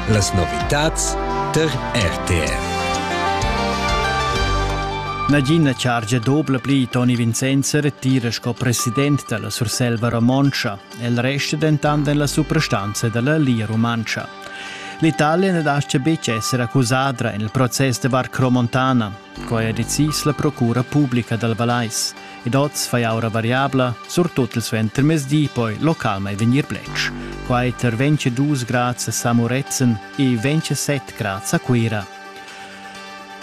Las novitads tar RTV. Nagina chargia dobla pli Toni Vincenzo retira sco president dalla Surselva Romontscha. El resta dentant en la suprastanza dalla Lia Rumantscha. L'Italia ne lascia betg essere accusadra en il proces de Barcro Montana. Quai ha decis la procura publica dal Vallais ed oz fai aura variabla, surtut il suentermezdi, poi localmain vegnir bletsch. Quai tar 22 grads a Samoretzen e 27 grads a Cuira.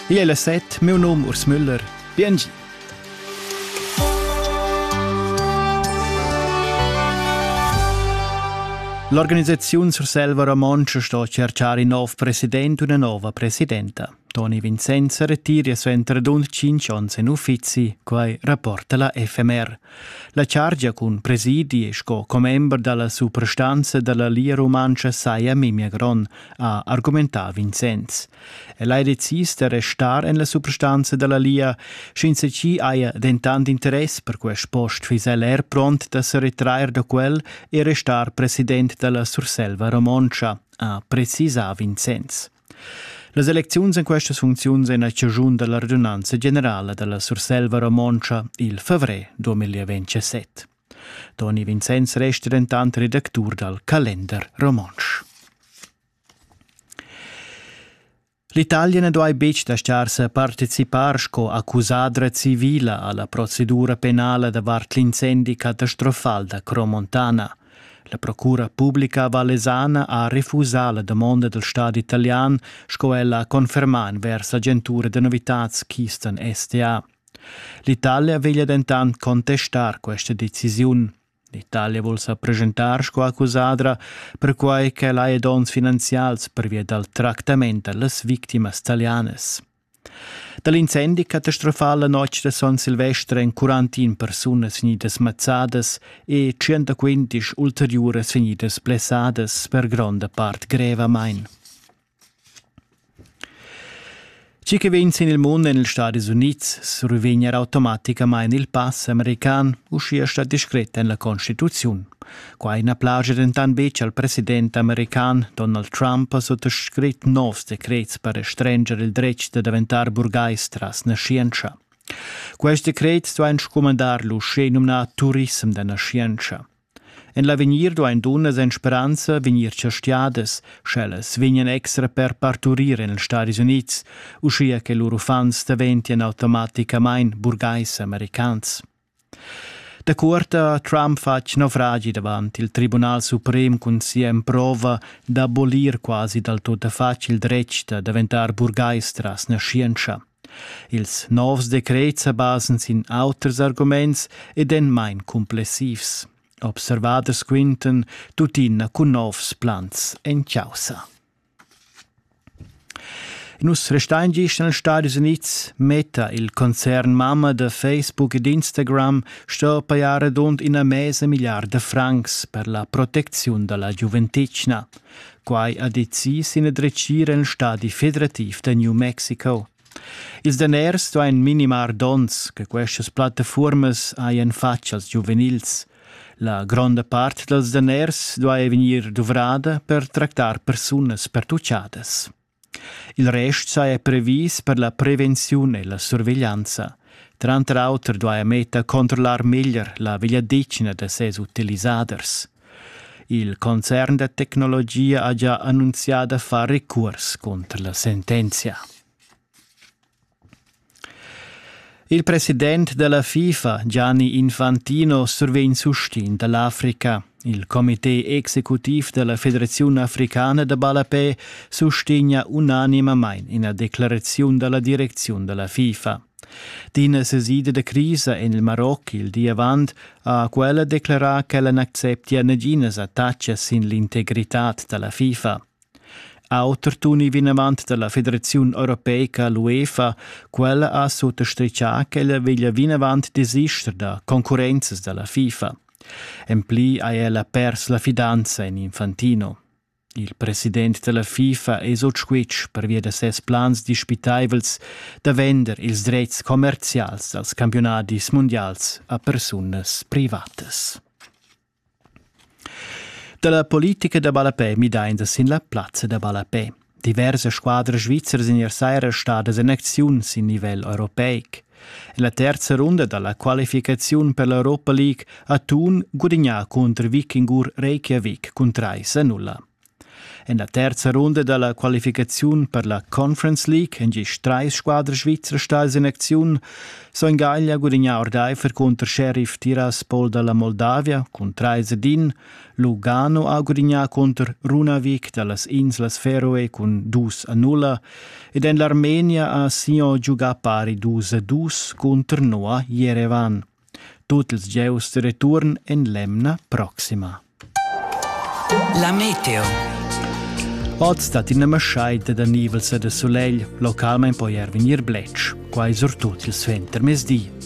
Igl è la set, meu num Urs Müller. Biengi! L'organisaziun Surselva Romontscha sto cerchar in nov president u una nova presidenta. Toni Vincenz retira suenter dun tschintg onns en uffizi, quai rapporta la FMR. La chargia cun presidi sco commember dalla suprastanza dalla Lia Rumantscha saja memia gron, ha argumentà Vincenz. El ha decis da restar en la suprastanza dalla Lia, sch'ins ci haja dentant interess per quest post fiss el er pront da se retrair da quel e restar president dalla Surselva Romontscha, ha precisà Vincenz. Las elecziuns en questas funcziuns en la chaschun da la radunanza generala da la Surselva romontscha il favrer 2027. Toni Vincenz resta dentant redactur dal Kalender romontsch. L'Italia na duai betg dastar sa participar sco accusadra civila a la procedura penala davart l'incendi catastrofal da Cromontana – La procura publica vallesana ha refusà la damonda dal stadi italian, sco ella ha confermà envers l'agentura da novitads Keystone STA. L'Italia veglia dentant contestar questa decisiun. L'Italia vul sa presentar sco accusadra, perquai ch'el ha donns finanzials pervia dal tractament da las victimas talianas. Da l'incendi catastrofal la notg da Son Silvester èn quarantin persunas vegnidas mazzadas e tschient ulteriuras vegnidas blessadas per gronda part grevamain. Tgi che vegn sin il mund en ils Stadis Unids survegn er automaticamain il pass american, uschia stat discret en la Constituziun. Quai na plaja dentant betg al president american Donald Trump sut scrit novs decrets per restrenger il dretg da daventar burgais tras naschientscha. Quest decret duain scumandar l'uschè numnà turissem da naschientscha. En l'avegnir duain dunnas en speranza vegnir chastiadas, sch'ellas vegnan extra per parturir en ils Stadis Unids, uschia che lur uffants daventien automaticamain burgais americans. Da cuorta ha Trump fatg naufragi davant il Tribunal suprem cun sia emprova d'abolir quasi dal tuttafatg il dretg da daventar burgais tras naschientscha. Ils novs decrets sa basan sin auters arguments ed èn main cumplessivs. Observaders quintan tuttina cun novs plans en chaussa. Nus restein gist nels Stadis Units, metta il concern mamma da Facebook ed Instagram sto pajar radund ina mesa milliarda francs per la protecziun dalla giuventetgna. Quai ha decis in dretgir en stadi federativ da New Mexico. Ils daners duain minimar donns che questas plattafuormas hajan fatg als giuvenils. La gronda part dals daners duai vegnir duvrada per tractar persunas pertuchadas. Il rest saja previs per la prevenziun e la surveglianza. Tranter auter duaja Meta controllar meglier la vegliadetgna da ses utilisaders. Il concern da tecnologia ha gia annunzià da far recurs cunter la sentenzia. Il president della FIFA, Gianni Infantino, survegn sustin dall'Africa. Il comité executiv della Federazione Africana da Ballapè sustegna unanimamain ina declarazione della direzione della FIFA. D'ina sesida da crisa en il Maroc il di avant ha quella declerà ch'ella n'acceptia naginas attachas sin l'integritad da la FIFA. Auter tuni vinavant da la Federaziun europeica l'UEFA, quella ha suttostrichà ch'ella veglia vinavant desister da concurrenzas da la FIFA. En pli ha ella pers la fidanza en Infantino. Il president dalla FIFA es ot squitsch pervia da ses plans dispitaivels da vender ils drets commercials dals campiunadis mundials a persunas privatas. Dalla politica da ballapè midainda sin la plazza da ballapè. Diversas squadras svizras in ier saira stadas en acziun sin nivel europeic. La terza runda dalla qualificaziun per l'Europa League a Thun gudigna cunter Vikingur Reykjavik cun 3-0. En la terza runda dalla qualificaziun per la Conference League han gist treis squadre svizzer stai sin acziun. Son Gaglia gudigna ordeifer cunter Sheriff Tiraspol dalla Moldavia cun 3-1 Lugano ha gudignà cunter Runavik da las inslas Feroe cun dus a nulla ed en l'Armenia ha Sion giugà pari dus a dus cunter Noa Jerevan. Tut ils gieus de return en l'emna proxima. La meteo. Oz dat ina maschaida da nivels e de solegl, localmein poi er vegnir bletsch. Quai surtut il suenter mesdi.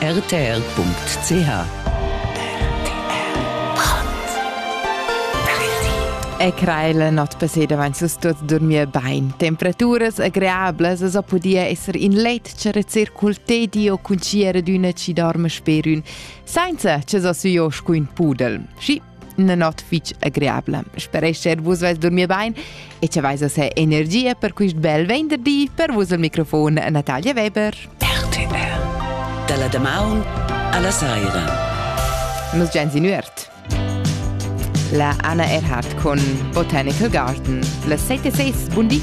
rtr.ch E creile not peseda vain sus tuot durmir bain. Temperaturas agreablas as ho pudia esser in letg, rezer cul tedi o cun tsiera d'üna chi dorma sper ün, sainza che s'ho sü jo scu ün pudel. Schi, Una notte fitg agreabla. Sperescher vus vais dormir bain e ce vais a se energia per quist bel venderdi per vus al microfon Natalia Weber. RTR Dalla damaun alla saira. Nos gens in üert. La Anna Erhardt con Botanical Garden. La 76 buon di.